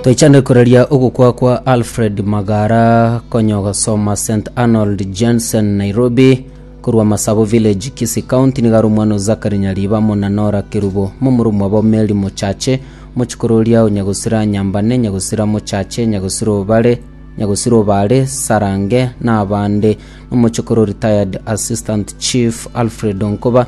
Toichane koraria ogokwa kwa Alfred Magara konya ogasoma St Arnold Jensen Nairobi korwa Masabo Village Kisii County nigo are omwana o Zakari Nyariba amo na Nora Kerubo momura omwabo Mary Mochache mochikoro oria o Nyagosira Nyambane Nyagosira Mochache Nyagosira Obare Nyagosira Obare Sarange na abande. Omochokoro Retired Assistant Chief Alfred Onkoba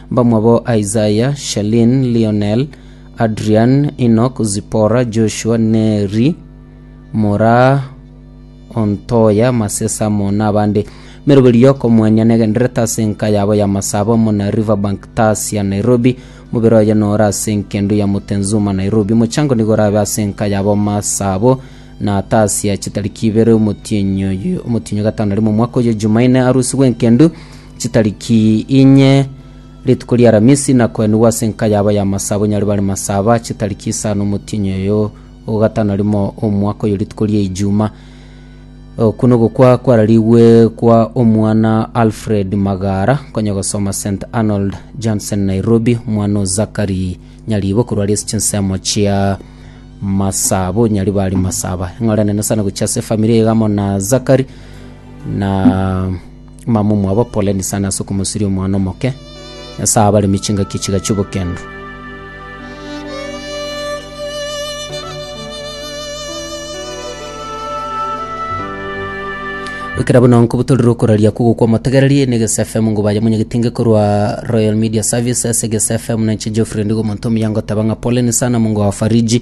Bamwabo Isaiah, Shalin, Lionel, Adrian, Enoch, Zipporah, Joshua, Neri, mora o Ntoya, Masesamo, na abande. Meroberi y'okomwanya negendererete ase enka yabo y'amasabo amo na Riverbank Tars ya Nairobi. Mobere oye nore ase enkendu ya Mutenzuma Nairobi. Mochango nigo orabe ase enka yabo masabo na Tars ya chitariki ibere omotienyi oye- omotienyi o gatano rimo omwaka oye Jumaine arusigwe enkendu Chitariki inye, rituko ri'Aramisi, nakoenigwa ase enka yabo y'amasabo nyare bare masaba, chitariki isano omotienyi oyo ogatano rimo omwaka oyo rituko ri'Eijuma. Oku nogokwa kwararigwe kwa omwana Alfred Magara, konya gosoma St Arnold, Johnson, Nairobi, omwana o Zakari Nyaribo korwa aria ase chinsemo chia masabo nyare bare masaba. Eng'ora enene sana gochia ase efamiri iga amo na Zakari na Mama omwabo poleni sana ase okomosiria omwana omoke. Nyasae abaremie chingaki chiga chi'obokendu. Ekera buna nko butorire okoraria kwa gokwa motegereri ni Gese FM ngo baye munyegetinge korwa Royal Media Services Gese FM na nche Geoffrey ndigo monto myango taba nga poleni sana mungo wa Fariji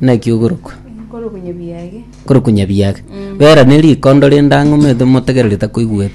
Naki ogorokwa? Nkorokwa nyabiage. Nkorokwa nyabiage. Bera nerikondo rende ang'e omoeto motegererete akoigweti.